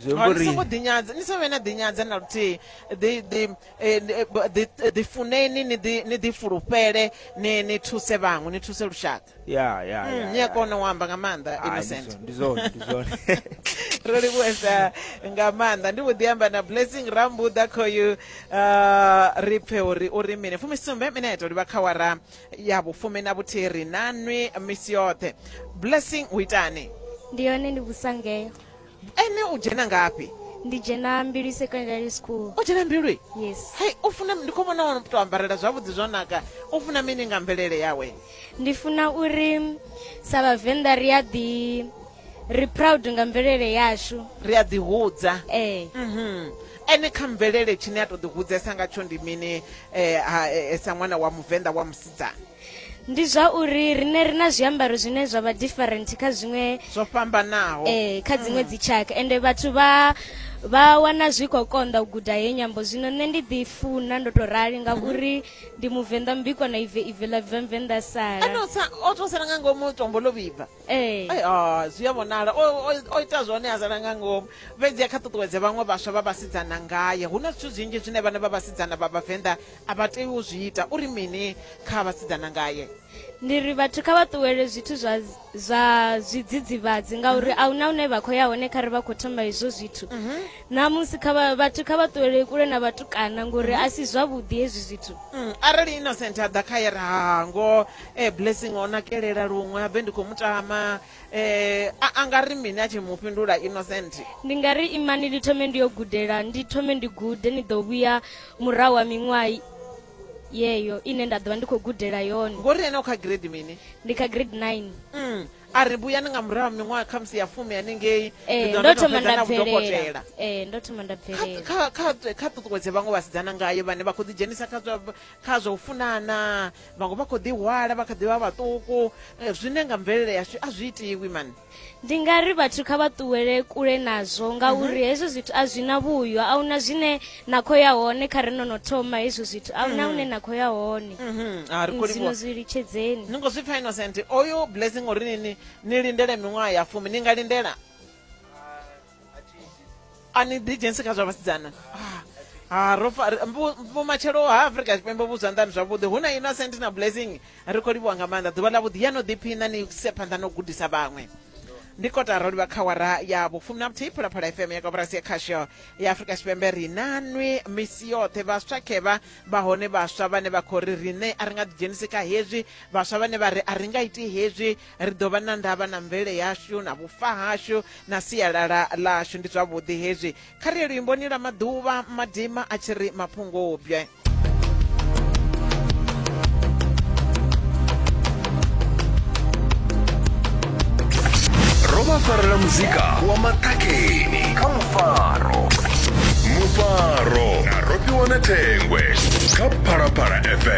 zwi amba uri songo ḓinyadza ni songo vhe na ḓinyadza na luthihi ḓifuneni eh, eh, ni ḓifulufhele ni thuse vhaṅwe ni thuse lushaka ya ya hmm, ni a kona u amba nga maanḓa innocent ndi zwone ndi zwone ro livhuwesa nga maanḓa ndi vho ḓi amba na blessing rambuḓa khoyu uh, ri pfe uri u ri mini fumisumbe mine ya tou livha kha wara ya vhufumi na vhuthihi ri nanwi misi yoṱhe blessing u itani ndi yone ndi vhusangeo ene u dzhena ngafhi ndi dzhena mbilwi secondary school o dzhena mbilwi yes hai u funa ndi khou vhona to ambarela zwavhuḓi zwo naka u funa mini nga mvelele yawe ndi funa uri sa vhavenḓa ri a ḓi ri proud nga mvelele yashu ri a ḓihudza ee mhm ene kha mvelele tshine a to ḓi hudzesa ngatsho ndi mini eh, ha, eh, sa ṅwana wa muvenḓa wa musidzana ndi zwa uri rine ri na zwiambaro zwine zwa vha different kha zwiṅwe zwo fhambanaho eh kha dziṅwe mm. dzitshaka ende vhathu vha vha wana zwi khou konḓa u guda he nyambo zwino nṋe ndi ḓi funa ndo tou rali ngauri ndi muvenḓa mbikwa na ive ive ḽa bva mvenḓa salao to sala nga ngomu tombo ḽo vhibva eh. ah, zwi a vhonala o ita zwone a sala nga ngomu fhedzi a kha ṱuṱuwedze vhaṅwe vhaswa vha vhasidzana ngaye hu na zwithu zwinzhi zwine vhana vha vhasidzana vha vhavenḓa A vha tei u zwi ita. U ri mini kha vhasidzana ngae? Ndi ri vhathu kha vha ṱuwele zwithu zwa zwa zwidzidzivhadzi ngauri mhm. a huna hune vha khou ya hone kha ri vha khou thoma hezwo zwithu mhm. ṋamusi kha vhathu kha vha ṱuwele kule na vhatukana ngori mhm. a si zwavhuḓi hezwi zwithu mm, arali innocent a ḓa kha ye ra hango e blessing o nakelela luṅwe a bve ndi khou mutama Eh, a a nga ri mini a tshi mu fhindula innocent ndi nga ri imani ndi thome ndi yo gudela ndi thome ndi gude ni ḓo vhuya murahu ha miṅwaha i- yeyo ine nda ḓovha ndi khou gudela yone ngori ene u kha grade mini ndi kha grade 9 Mm, a ri vhuyani nga murahu ha miṅwaha khamusi ya fumi hanengei Eh, ndi ḓo ndo no thoma fhedza nda na bvelela vhudokotela Eh, ndo thoma nda Kha- bvelela kha- kha- kha ṱuṱuwedze vhaṅwe vhasidzana ngayo vhane vha khou ḓidzhenisa kha zwa- kha zwa u funana vhaṅwe vha khou ḓihwala vha kha ḓi vha vhaṱuku eh, zwine nga mvelele yashu a zwi itiwi mani ndi nga ri vhathu kha vha ṱuwele kule nazwo ngauri mhm. hezwo zwithu a zwi na vhuyo a huna zwine na khou ya hone kha ri no no thoma hezwo zwithu a huna mhm. hune na khou ya hone mhm. zwino zwi litshedzeni ni ngo zwi pfa innocent oyo blessing uri nini ni lindele miṅwaha ya fumi ni nga lindela ani digency kha zwa vhasidzana ah, ah, vhomatshelo ha afrika tshipembe vhu zwanḓani zwavhuḓi hu na innocent na blessing ri khou livhuwa nga maanḓa ḓuvha ḽa vhuḓi ya no ḓiphina ni se phanḓa no gudisa vhaṅwe ndi kota ro livha kha wara ya vhufumi na vhuthihi phalaphala fm ya koporasi ya khasho ya afurika tshipembe ri na nwi misi yoṱhe vhaswa khevha vha hone vhaswa vhane vha khou ri riṋe a ri nga ḓidzhenisi kha hezwi vhaswa vhane vha ri a ri nga iti hezwi ri ḓo vha na ndavha na mvele yashu na vhufa hashu na sialala ḽashu ndi zwavhuḓi hezwi kha ri ye luimboni lwa maḓuvha madima a tshi ri maphungubye Roma farela muzika wa maṱakeni kha mufaro mufaro na rofhiwa na thengwe kha phalaphala fm